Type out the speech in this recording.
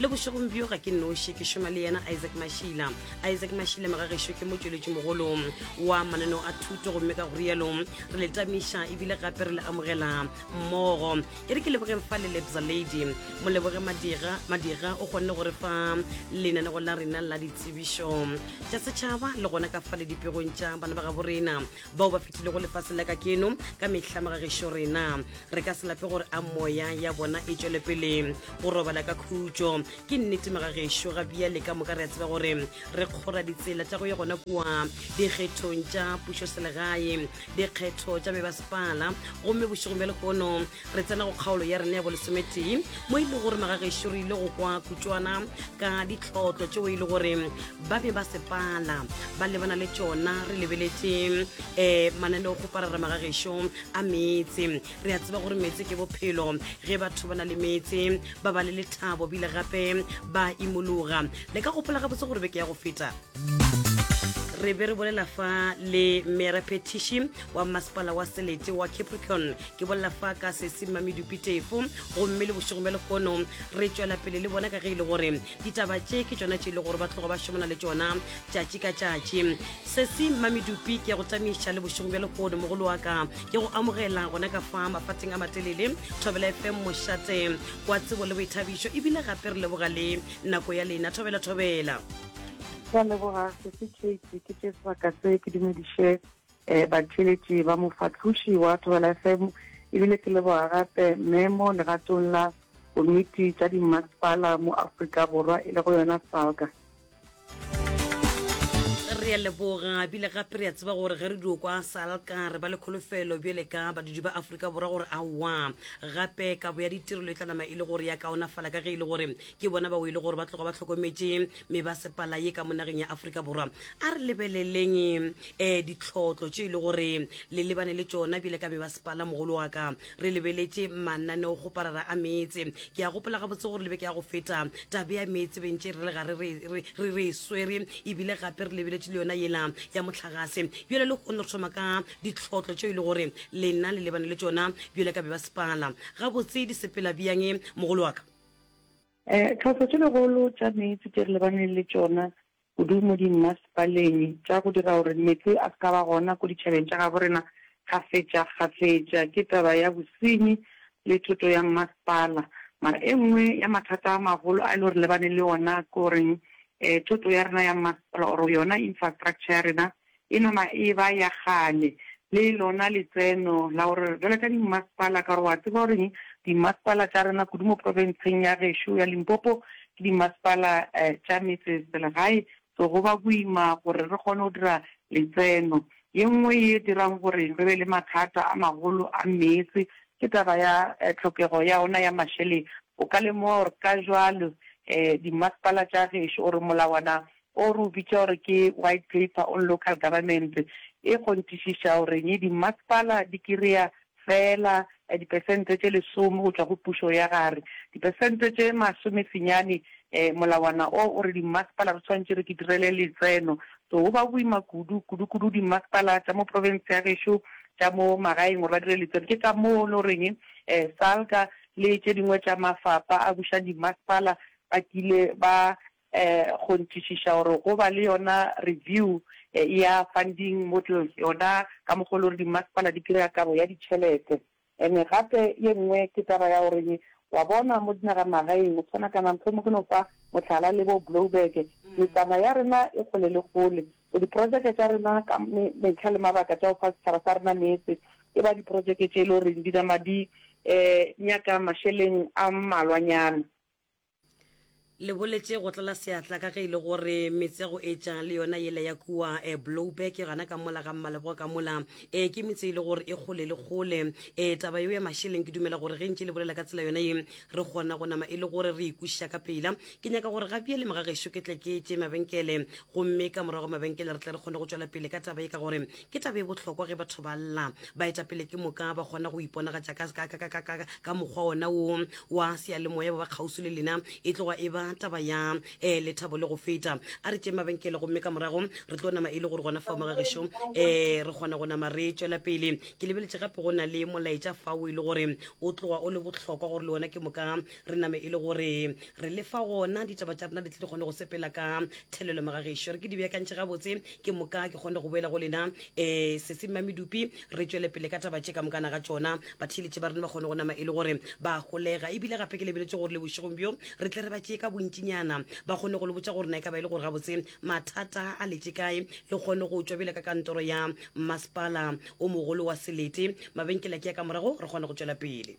le bošegong bjo ga ke noši ke šoma le yena isaac mašila isaac mašila magagešo ke motšweletši mogolo wa mananeo a thuto gomme ka go rialo re le tamiša ebile gape re le amogela mmogo e re ke lebogeng fa le lebza lady mo leboge madira madira o kgonne gore fa lenanego la rena la ditsebišo tša setšhaba le gona ka fa le dipegong tša bana ba gabo rena bao ba fetilego lefaseng la ka keno ka mehla magagešo rena re ka se lape gore a moya ya bona e tšwele pele go robala ka khutšo ke nnete magagešo ga bia le ka moka re a tseba gore re kgora ditsela tša go ye gona kua dikgethong tša pušoselegae dikgetho tša mebaspala gomme bošegong bja lehono re tsena go kgaolo ya rena ya bolesometee mo e le gore magagešo re ile go kwa kutšwana ka ditlotlo tšeo e le gore ba be ba sepala ba lebana le tšona re lebeletše um eh, mananeo go parara magagešo a meetse re a tseba gore meetse ke bophelo ge batho ba na le meetse ba ba le lethabo bile gape ba imologa le ka gopola gabotse gore beke ya go feta re be re bolela fa le mera petition wa masepala wa selete wa capricorn ke bolela fa ka sesima medupi tefo gomme le bošego bja lehono re tšwela pele le bona ka ge e le gore ditaba tše ke tšona tše e le gore ba tlogo ba šomana le tšona tšatši ka tšatši sesi mamedupi ke ya go tamiša le bošego bja lehono mogolo wa ka ke go amogela gona ka fa mafateng a matelele thobela fm mošate wa tsebo le boithabišo ebile gape re leboga le nako ya lena thobela thobela ka leboga sesi kate ke tše sebaka se ke dumediše E, batheeletši ba mofahloši wa Thobela FM, e bile ke leboga gape me mo legatong la Komiti tša Dimmasepala mo Afrika Borwa e lego yona SALGA. Re a leboga bile gape re a tseba gore ge re dio kwa salka re ba le kholofelo bjale ka badudi ba aforika borwa gore aowa gape kabo ya ditirelo e tla nama e le gore ya kaonafala ka ge e le gore ke bona bao e le gore ba tloga ba tlhokometše mebasepala ye ka mo nageng ya aforika borwa a re lebeleleng um ditlhotlo tše e le gore le lebane le tšona bjale ka mebasepala mogolo wa ka re lebeletše mananeo go parara a meetse ke a gopola gabotse gore lebe ke ya go feta tabe ya meetse bentše re le ga re re swere ebile gape re lebeletše le yona yela ya motlhagase bjale le kgone re thoma ka ditlhotlo tše e le gore lena le lebane le tšona bjale ka mebasepala gabotse di sepela bjang mogolo wa ka Eh, tlhohlo tše legolo tša meetse tše re lebaneng le tšona kudu mo dimmasepaleng tša go dira gore meetse a se ka ba gona ko ditšhabeng tša gabo rena kgafetšakgafetša ke taba ya bosenyi le thoto ya mmasepala. Mara e nngwe ya mathata a magolo a e le gore re lebaneng le ona ke goreng eh thoto ya rena ya mmasepala or yona infrastructure ya rena e no na e ba ya kgale, le lona letseno la go re bjalo ka dimmasepala, ka gore o a tseba gore eng, dimmasepala tša rena kudu mo profenseng ya gešo ya Limpopo ke dimmasepala tša metseselegae, so go ba boima gore re kgone go dira letseno. Ye nngwe ye dirang gore re be le mathata a magolo a meetse ke taba ya tlhokego ya ona ya mašeleng. O ka lemoga gore ka jwalo dimmasepala tša gešo or molawana o re o bitša gore ke White Paper on Local Government, e kgonthišiša gore dimasepala di kry-a feela dipesente tše lesome go tšwa go pušo ya gare. Dipesente tše masome senyane, molawana o o re dimasepala re swanetše re ke direle letseno. So go ba boima kudu, kudu kudu dimasepala tša mo province ya gešo tša mo magaeng gore ba dire letseno. Ke ka moo e le goreng SALGA le tše dingwe tša mafapa a bušang dimasepala ba kile ba Go ntšišiša gore go ba le yona review ya funding models yona ka mokgwa o le gore dimasepala di kry-a kabo ya ditšhelete. And gape ye nngwe ke taba ya gore wa bona mo dinagamagaeng go tshwana kana mohlomong ke no fa mohlala le bo Blouberg metsana ya rena e kgole le kgole. So diprojeke tša rena ka metlha le mabaka tša go fa setšhaba sa rena meetse e ba diprojeke tše e le goreng di nama di nyaka mašeleng a mmalwanyana. Le boletše go tlala seatla ka ge e le gore metse ya go etša le yona yela ya kua e Blouberg gana ka mola ga Mmaleboa ka mola e ke metse e le gore e kgole le kgole. E taba yeo ya mašeleng ke dumela gore ge ntše le bolela ka tsela yona ye re kgona go nama e le gore re ikwešiša ka pela. Ke nyaka gore ga bjale moga gešo ke tle ke tše mabenkele gomme ka morago mabenkele re tle re kgone go tšwela pele ka taba ye ka gore Ke taba e bohlokwa ge batho ba lla. Baetapele ke moka ba kgona go iponagatša ka, ka, ka, ka, ka, ka, ka mokgwa wona wo wa seyalemoya ba ba kgauswi le lena. E tloga e ba taba ya eh, lethabo le go feta. A re tšeng mabenkele gomme ka morago re tlo nama e le gore gona fao mga gešo eh, re kgona go nama re tšwela pele. Ke lebeletše gape go na le molaetša fao e le gore o tloga o le bohlokwa gore le wona ke moka re name e le gore re lefa gona ditaba tša rena di tle di kgone go sepela ka thelelo magagešo re ke di beakantšhe gabotse ke moka ke kgone go boela go lena um eh, sesemma medupi re tšwele pele ka taba tše ka mokana ga tšona batheeletše ba rena ba kgone go nama e le gore ba golega ebile gape ke lebeletse gore le bošegong bjo re tle re ba tšee ka bontšinyana ba kgone go le botsa gore na e ka ba e le gore gabotse mathata a letse kae le kgone go tšwa bjele ka kantoro ya masepala o mogolo wa selete mabenkela ke ya ka morago re kgone go tšwela pele